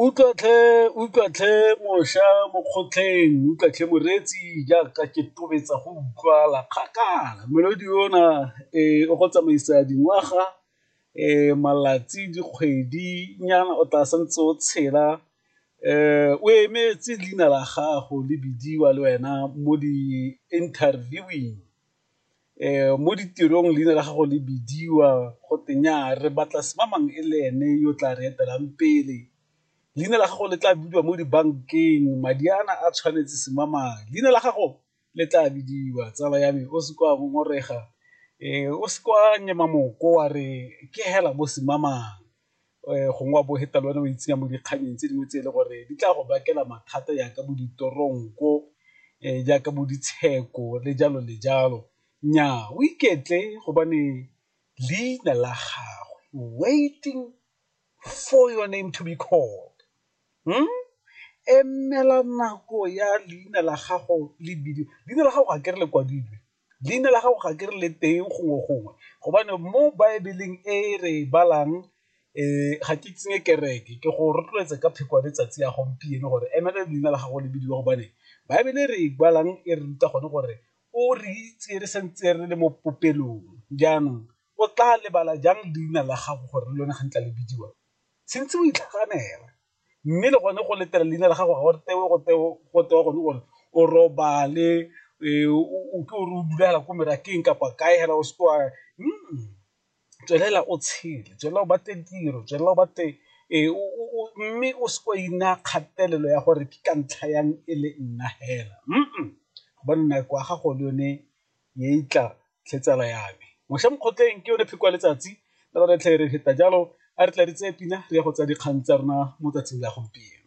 utlwa tlhe utlwa tlhe mosha mo kgotlheng utlwa tlhe moreetsi jaaka ke tobetsa go utlwala kgakala melodi ona um o go tsamaisa dingwaga um malatsi dikgwedi nyana o tla santse o tshela um o emetse leina la gago le bidiwa le wena mo di-interviewing. um mo ditirong leina la gago le bidiwa go te nyaa re batla semamang e le ene yo tla re etelang pele leina la gago le tla bidiwa mo dibankeng madi ana a tshwanetse semamang leina la gago le tla bidiwa tsala ya me o se kwa ngongorega um o se kwa nyema moko wa re ke hela bo semamang. um gongwe wa bo feta le one o itsenya mo dikganyeng tse dingwe tse e le gore di tla go bakela mathata yaka bo ditoronko um jaaka bo ditsheko le jalo le jalo nnyaa o iketle gobane leina la gagwe waiting for your name to be called emela nako ya leina la gago le bidiwa, leina la gago ga ke re le kwadilwe leina la gago ga ke re le teng gongwe gongwe gobane mo baebeleng e re e balang ga ke tsenye kereke ke go rotloetsa ka pheko ya letsatsi ya gompieno gore emele leina la gago le bidiwa gobane baebele re e balang e re ruta gone gore o re itse re santse re le mo popelong, jaanong o tla lebala jang leina la gago gore le lone ga ntla le bidiwa, tshwantse o itlhaganela. mme le gone go letela leina la gago ga gore tewe go tewe go tewa gone gore o robale o ke o re o dula hela ko merakeng kapa kae hela o seke wa tswelela o tshele tswelela o batle tiro tswelela o batle mme o seke wa ina kgatelelo ya gore ke ka ntlha yang e le nna hela gobane nako ya gago le yone ye e tla tlhe tsala ya me mošwa mokgotleng ke yone pheko ya letsatsi le lone tlhe re feta jalo a re tla re tseye pina re ya go tsa dikgang tsa rona mo tsatsing la gompieno